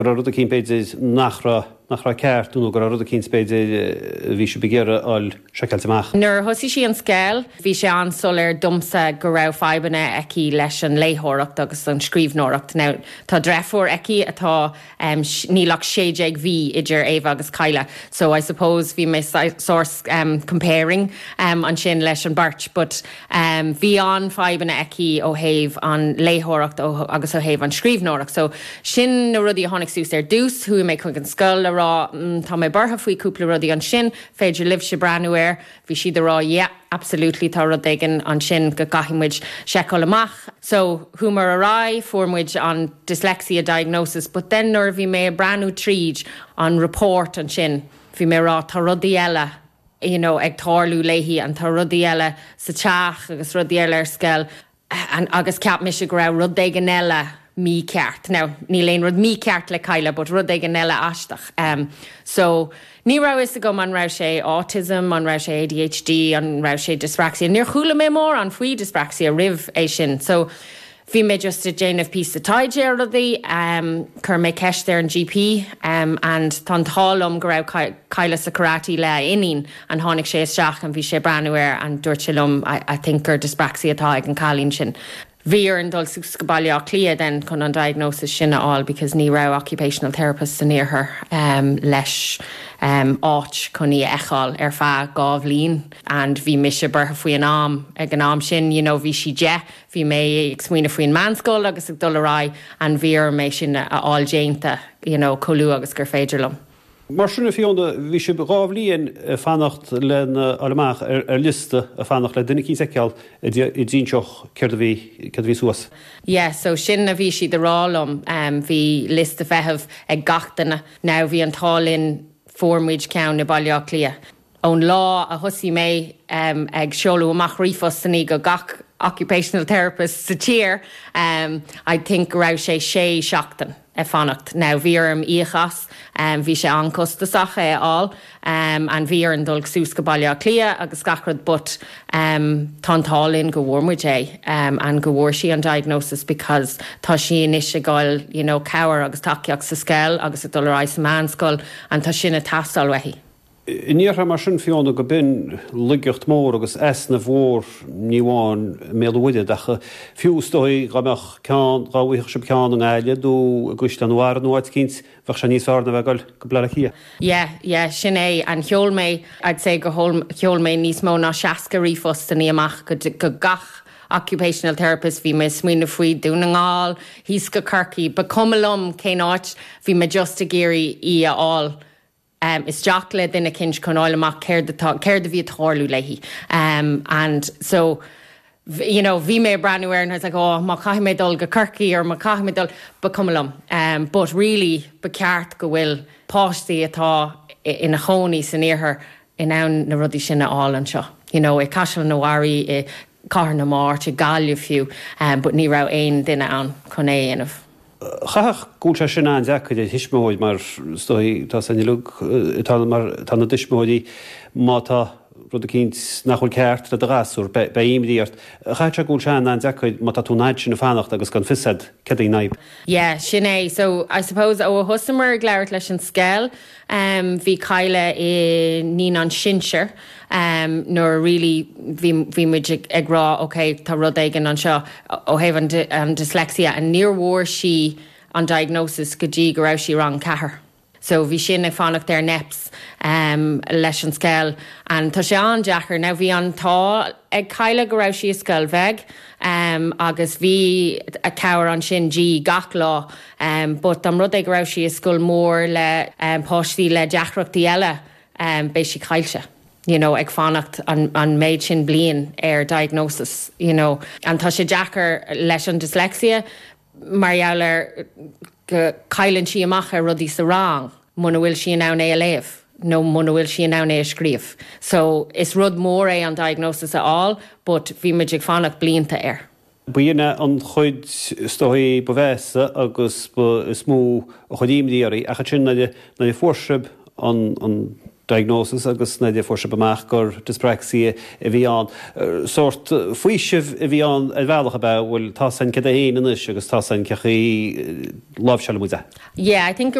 go raibh rud eicínt b'fhéidir nach raibh, nach raibh ceart, nó go raibh rud eicínt b'fhéidir a bhí sibh ag iarraidh a fháil seiceáilte amach. Nuair a thosaigh sí an scoil, bhí sé an-soiléir dhomsa go raibh fadhbanna aici leis an léitheoireacht agus an scríbhneoireacht. Now, tá dreithiúr aici atá, níl ach sé déag mhí idir Éabha agus Cadhla, so I suppose bhí mé sórt comparing ansin leis an beirt, but, bhí an-fhadhbanna aici ó thaobh an léitheoireacht ó agus ó thaobh an scríbhneoireacht so sin na rudaí a tháinig suas ar dtús chuaigh mé chuig an scoil a rá mm tá mé buartha faoi cúpla rudaí an féidir libhse breathnú air bhí siad a rá yea absolutely tá rud éigin ansin go gcaithfidh muid seiceáil amach so chuamar ar aghaidh fuair muid an dyslexia diagnosis but then nuair a bhí mé ag breathnú tríd an report ansin bhí mé a rá tá rudaí eile a you know, ag tarlú léi and tá rudaí eile sa teach agus rudaí eile ar scoil and agus cheap mise go raibh rud éigin eile mícheart. Now, níl aon rud mícheart le Cadhla but rud éigin eile aisteach. em So, ní raibh fhios agam an raibh sé autism, an raibh sé ADHD, an raibh sé dyspraxia. Níor chuala mé mórán faoi dyspraxia roimh é sin. So, Bhí mé just ag déanamh píosa taighde ar rudaí, chuir mé ceist ar an GP and tá an t-ádh liom go raibh, Cadhla sa karate lena iníon and tháinig sé isteach and bhí sé ag breathnú air and dúirt sé liom I think gur dyspraxia atá ag an cailín sin. Bhí orainn dul suas go Baile Átha Cliath then chun an diagnosis sin a fháil because ní raibh occupational therapists san iarthar leis áit chun í a fheiceáil ar feadh dhá bhliain and bhí mise buartha faoi an am, ag an am sin, you know bhí sí deich. Bhí mé ag smaoineamh faoin meánscoil agus ag dul ar aghaidh and bhí orm é sin a fháil déanta you know chomh luath agus gur féidir liom. Mar sin, a Fiona, bhí sibh dhá bhliain ag fanacht lena fháil amach ar ar liosta, ag fanacht le duine eicínt a fheiceáil a d'inseodh céard a bhí, céard a bhí suas. Yeah, so sin a bhí siad a rá liom, em bhí liosta feithimh ag gach duine. Now bhí an t-ádh linn fuair muid ceann i Baile Átha Cliath. Ón lá a thosaigh mé ag seoladh amach ríomhphostannaí go gach occupational therapist sa tír, I think go raibh sé sé sheachtain ag fanacht. Now bhí orm íoc as, bhí sé an-costasach é a fháil and bhí orainn dul suas go Baile Átha Cliath agus gach rud but tá an t-ádh linn go bhfuair muid é and go bhfuair sí an diagnosis because tá sí anois ag fháil you know cabhair agus tacaíocht sa scoil agus ag dul ar aghaidh sa meánscoil and tá sin ag teastáil uaithi. San iarthar mar sin Fiona, go mbíonn laigeacht mhór agus easnamh mhór ní amháin i mBéal an Mhuirthead ach fiú, is dóigh, dhá mbeadh ceann, dhá bhfaighfeadh sibh ceann i nGaillimh nó i gCaisleán an Bharraigh nó áit eicínt, bheadh sé níos fearr ná a bheith ag dul go Bleá Cliath. Yeah, yeah, sin é an, sheol mé, I'd say gur sheol mé níos mó ná 60 ríomhphostannaí amach go gach occupational therapist, bhí mé ag smaoineamh faoi Dún na nGall, thíos go Corcaigh, ba chuma liom cén áit, bhí mé just ag iarraidh í a fháil um, isteach le duine eicínt chun fháil amach céard atá, céard a bhí ag tarlú léi um and so you know bhí mé ag breathnú air and I was like oh má chaithfidh mé dul go Corcaigh or má chaithfidh mé dul ba cuma liom um but really ba cheart go bhfuil páistí atá ina chónaí san iarthar in ann na rudaí sin a fháil anseo you know i gCaisleán an Bharraigh i gCathair na Mart, i gGaillimh fiú, but ní raibh aon duine ann chun é a dhéanamh. Chaithfeadh go bhfuil sé sin an-deacair ar thuismitheoir mar is dóichí tá a fhios a'inn uileag atá ina dtuismitheoirí má tá rud eicínt nach bhfuil ceart le do ghasúr beidh imní ort. Caithfidh sé go bhfuil sé an-an-deacair má tá tú an fhad sin ag fanacht agus gan fios a'd céard é an fhadhb. Yeah, sin é. So, I suppose ó a thosaíomar ag labhairt leis an scoil, Bhí Kyla i naíonáin sinsir nuair a really bhí bhí muid ag rá ok tá rud éigin anseo ó thaobh an dyslexia and níor bhfuair sí an diagnosis go dtí go raibh sí i rang a ceathair so bhí sin ag fanacht ar NEPS leis an scoil and tá sé an-deacair now bhí an t-ádh ag Kyla go raibh sí i scoil bheag agus bhí an chabhair ansin di gach lá but dá mba rud é go raibh sí i scoil mór le páistí le deacrachtaí eile beidh sí caillte you know ag fanacht an an méid sin bliain ar diagnosis you know and tá sé deacair leis an dyslexia mar gheall ar go gcailleann sí amach ar rudaí sa rang muna bhfuil sí in ann é a léamh nó muna bhfuil sí in ann é a scríobh so is rud mór é an diagnosis a fháil but bhí muid ag fanacht blianta air. B'in é an chuid is dóichí ba mheasa agus ba is mó a chuir imní oraibh ach ansin nuair a fuair sibh an diagnosis agus nuair a fuair sibh amach gur dyspraxia a bhí ann. Sórt faoiseamh a bhí ann ar bhealach, ab ea? Bhuel, tá a fhios a'inn céard é fhéin anois agus tá a fhios a'inn cén chaoi a láimhseálfaidh muid é. Yeah, I think.